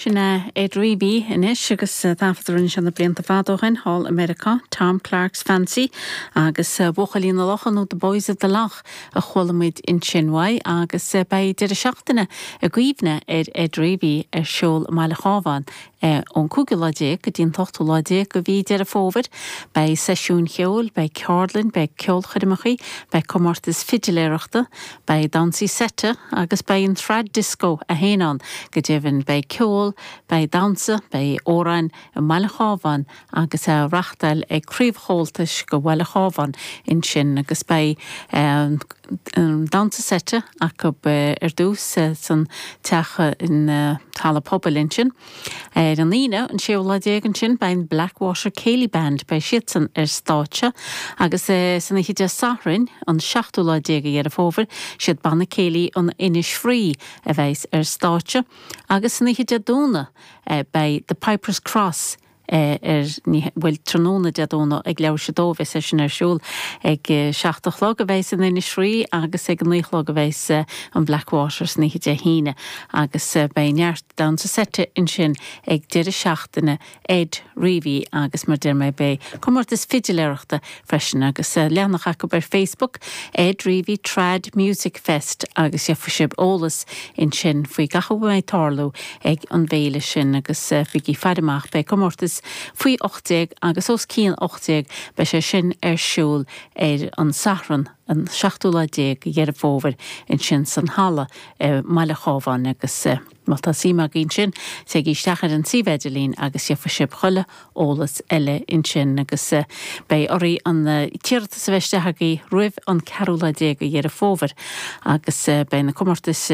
Sin é Ed Reavy anois agus taifead a rinne sé na blianta fada ó shin thall i Meiriceá, Tom Clark's Fancy agus Buachaillí na Locha nó The Boys of the Lough a chuala muid ansin uaidh agus beidh deireadh seachtaine i gcuimhne ar Ed Reavy ar siúl i mBaile an Chabháin ón gcúigiú lá déag go dtí an t-ochtú lá déag de mhí Deireadh Fómhair. Beidh seisiúin cheoil, beidh ceardlainn, beidh ceolchoirmeacha, beidh comórtais fidiléireachta, beidh damhsaí seite agus beidh an Trad Disco féin ann. Go deimhin beidh ceol, beidh damhsa, beidh amhráin i mBaile an Chabháin agus á reachtáil ag Craobh Chomhaltais go Bhaile an Chabháin ansin agus beidh an damhsa seite acu ar dtús san teach na halla pobail ansin ar an Aoine an séú lá déag ansin beidh an Blackwater Céilí Band beidh siadsan ar stáitse agus san oíche Dé Sathairn an seachtú lá déag de Dheireadh Fómhair siad Banna Céilí an Innisfree a bheas ar stáitse agus san oíche Dé Domhnaigh beidh The Pipers Cross ar an oíche, bhuel, tráthnóna Dé Domhnaigh ag leathuair tar éis a dó beidh sé sin ar siúl ag a seacht a chlog a bheas an Innisfree agus ag a naoi a chlog a bheas an Blackwater san oíche Dé hAoine agus beidh neart damhsa seite ansin ag deireadh seachtaine Ed Reavy agus mar deir mé beidh comórtas fidiléireachta freisin agus leathanach acu ar Facebook, Ed Reavy Trad Music Fest agus gheobhaidh sibh eolas ansin faoi gach a mbeidh ag tarlú ag an bhféile sin agus bígí ag faire amach beidh comórtas faoi 18 agus os cionn 18 beidh sé sin ar siúl ar an Satharn an seachtú lá déag de Dheireadh Fómhair ansin san halla i mBaile an Chabháin agus. Má tá suim agaibh ansin, téigí isteach ar an suíomh idirlín agus gheobhaidh sibh chuile eolas eile ansin agus beidh oraibh an t-iarratas a bheith isteach agaibh roimh an ceathrú lá déag de Dheireadh Fómhair agus beidh na comórtais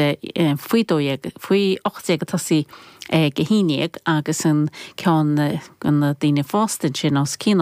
faoi dó dhéag, faoi ocht déag ag tosaí ag a haon dhéag agus an ceann do na daoine fásta ansin os cionn.